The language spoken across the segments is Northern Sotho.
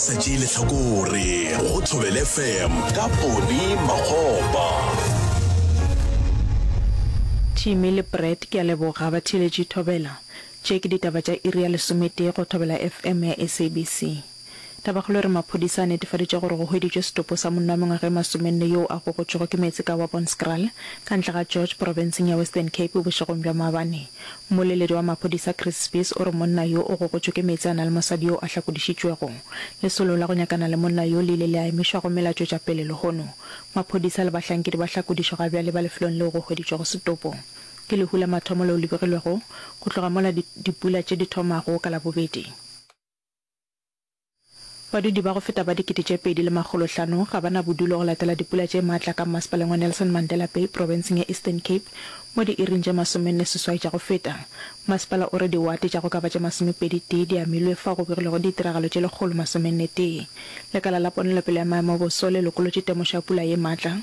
Sa tšee lehlakore go Thobele FM ka Poni Makgopa. Jimmy le Brett ke a leboga batheeletši Thobela. Tše ke ditaba tša iri ya lesometee go Thobela FM ya SABC. Tabakgolo e re maphodisa a netefaditše gore go hweditšwe setopo sa monna wa mengwaga e masomenne yoo a gogotšwego ke meetse ka Wabonskraal, ka ntle ga George, porofenseng ya Western Cape bošegong bja maabane. Mmoleledi wa maphodisa Chris Spies o re monna yo o gogotšwe ke meetse a na le mosadi yo a hlakodišitšwego. Lesolo la go nyakana le monna yo le ile le a emišwa gomme la tšwetša pele lehono. Maphodisa le bahlankedi ba hlakodišo ga bjale ba lefelong leo go hweditšwego setopo. Ke lehu la mathomo leo le begilwego go tloga mola dipula tše di thomago ka Labobedi. Badudi ba go feta ba dikete tše pedi le makgolo hlano ga ba na bodulo go latela dipula tše maatla ka mmasepaleng wa Nelson Mandela Bay profenseng ya Eastern Cape mo diiring tše masomenne seswai tša go feta. Mmasepala o re diwate tša go ka ba tše masomepedi tee di amilwe fao go begilwego ditiragalo tše lekgolo masomenne tee. Lekala la ponelopele ya maemo a boso le lokolotše temošo ya pula ye maatla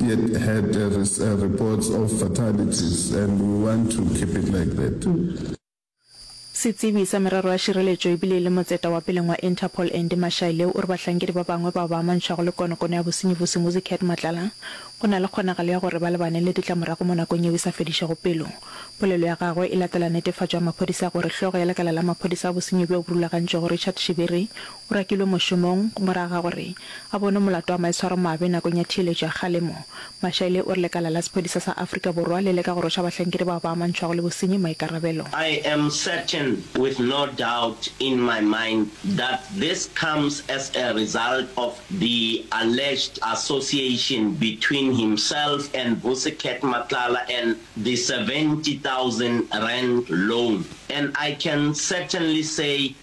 It had a reports of fatalities and we want to keep it like that. Setsebi sa merero ya šireletšo ebile e le motseta wa peleng wa Interpol Andy Mashaile o re bahlankedi ba bangwe bao ba amantšhwago le konokono ya bosenyi bo Simuzi Cat Matlala go na le kgonagalo ya gore ba lebane le ditlamorago mo nakong yeo e sa fedišego pelo. Polelo ya gagwe e latela netefatšo ya maphodisa ya gore hlogo ya lekala la maphodisa a bosenyi bjo bo rulagantšwego Richard Shibiri O rakilwe mošomong morago ga gore a bonwe molato wa maitshwaromabe nakong ya theeletšo ya kgalemo. Mashaile o re lekala la sephodisa sa Afrika Borwa le leka go rwesha bahlankedi bao ba amantšhwago le bosenyi maikarabelo. I am certain with no doubt in my mind that this comes as a result of the alleged association between himself and Vusi Cat Matlala and the 70,000 rand loan and I can certainly say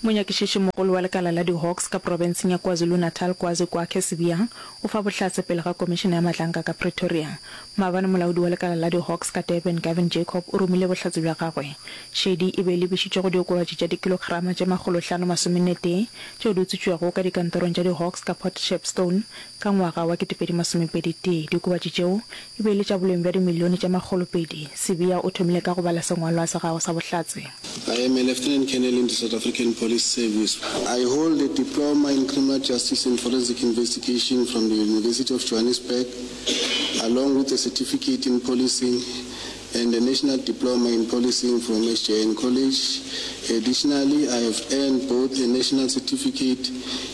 Monyakišišimogolo wa lekala la di-Hawks ka profenseng ya KwaZulu-Natal, Kwazi Kwakhe Sibiyang, o fa bohlatse pele ga Komišene ya Matlanka ka Pretoria. Maabane molaodi wa lekala la di-Hawks ka Durban, Gavin Jacob, o romile bohlatse bja gagwe. Šedi e be e lebišitšwe go diokobatši tša dikilograma tše makgolo hlano masomenetee tšeo di utswitšwego ka dikantorong tša di-Hawks ka Port Shepstone ka ngwaga wa ketepedi masomepeditee. Diokobatši tšeo e be e le tša boleng bja dimilione tša makgolopedi. Sibiya o thomile ka go bala sengwalwa sa gagwe sa bohlatse. I am a Lieutenant Colonel in the South African Police Service. I hold a Diploma in Criminal Justice and Forensic Investigation from the University of Johannesburg, along with a Certificate in Policing and a National Diploma in Policing from SJN College. Additionally, I have earned both a National Certificate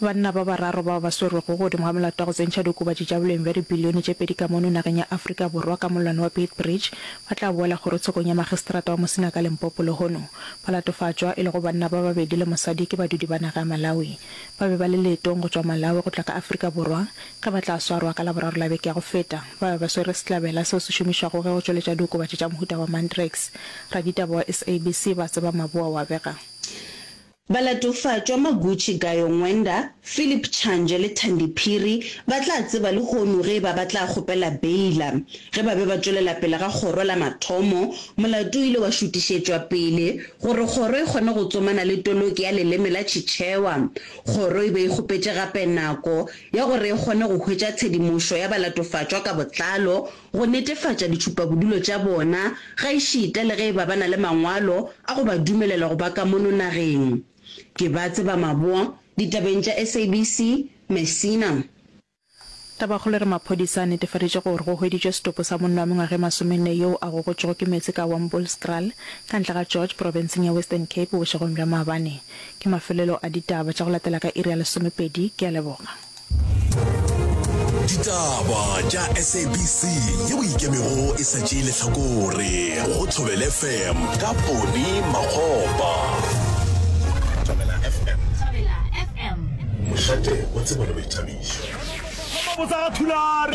Banna ba bararo bao ba swerwego godimo ga molato wa go tsentšha diokobatši tša boleng bja dibilione tše pedi ka mono nageng ya Afrika Borwa ka mollwane wa Beitbridge ba tla boela kgorotshekong ya makgistrata wa Musina ka Limpopo lehono ba latofatšwa, e lego banna ba babedi le mosadi, ke badudi ba naga ya Malawi. Ba be ba le leetong go tšwa Malawi go tla ka Afrika Borwa ge ba tla swarwa ka Laboraro la beke ya go feta. Ba be ba swere sehlabela seo se šomišwago ge go tšweletša diokobatši tša mohuta wa Mandrakes. Raditaba wa SABC ba Tseba Maboa wa bega. Balatofatšwa Maguchi Gayo Ngwenda, Phillip Change le Thandi Phiri ba tla tseba lehono ge e ba ba tla kgopela beila. Ge ba be ba tšwelela pele ga kgoro la mathomo, molato o ile wa šutišetšwa pele gore kgoro e kgone go tsomana le toloki ya leleme la Chichewa. Kgoro e be e kgopetše gape nako ya gore e kgone go hwetša tshedimošo ya balatofatšwa ka botlalo go netefatša ditšhupabodulo tša bona gaešita le ge e ba ba na le mangwalo a go ba dumelela go ba ka mono nageng. Ke ba tseba maboa ditabeng tša SABC, Messina. Tabakgolo e re maphodisa a netefaditše gore go hweditšwe setopo sa monna wa mengwaga e masomenne yoo a gogotšwego ke meetse ka Wambullskraal, ka ntle ga George, profenseng ya Western Cape bošegong bja maabane. Ke mafelelo a ditaba tša go latela ka iri ya lesomepedi. Ke a leboga. ditaba tša sabc ye o ikemego e sa tšee lehlakore go thobel fm ka pone makgopa mošate wa tsebo le boithabišo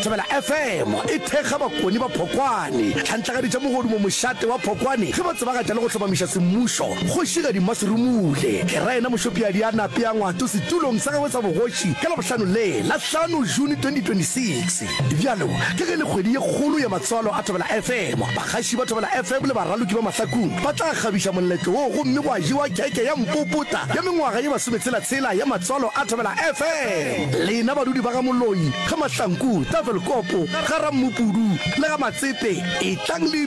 thobela fm e thekga bakoni ba phokwane tlhantlagaditša mogodumo mošate wa phokwane ge ba tsebagatša le go hlomamiša semmušo kgošigadi mmaserumule ke raena mošopiadi a nape ya ngwato setulong sa gagwe la bogoši ka Labohlano le la hlano June 2026. Bjalo ka ge e le kgwedi ye kgolo ya matswalo a Thobela FM, bagaši ba Thobela FM le baraloki ba mahlakung ba tla kgabiša moletlo wo gomme gwa jewa kheke ya mpopota ya mengwaga ye masometshela-tshela ya matswalo a Thobela FM. Lena badudi ba ga Moloi, ga Mahlanku, Tafelkopo, ga Rammopudu le ga Matsepe etlang le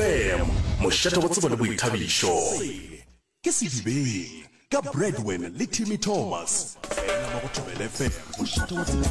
fm mošate go tsebo le boithabišo ke sedibeng ka bradwin le timmy thomas fela mo go thobele fm mošate wa tsebo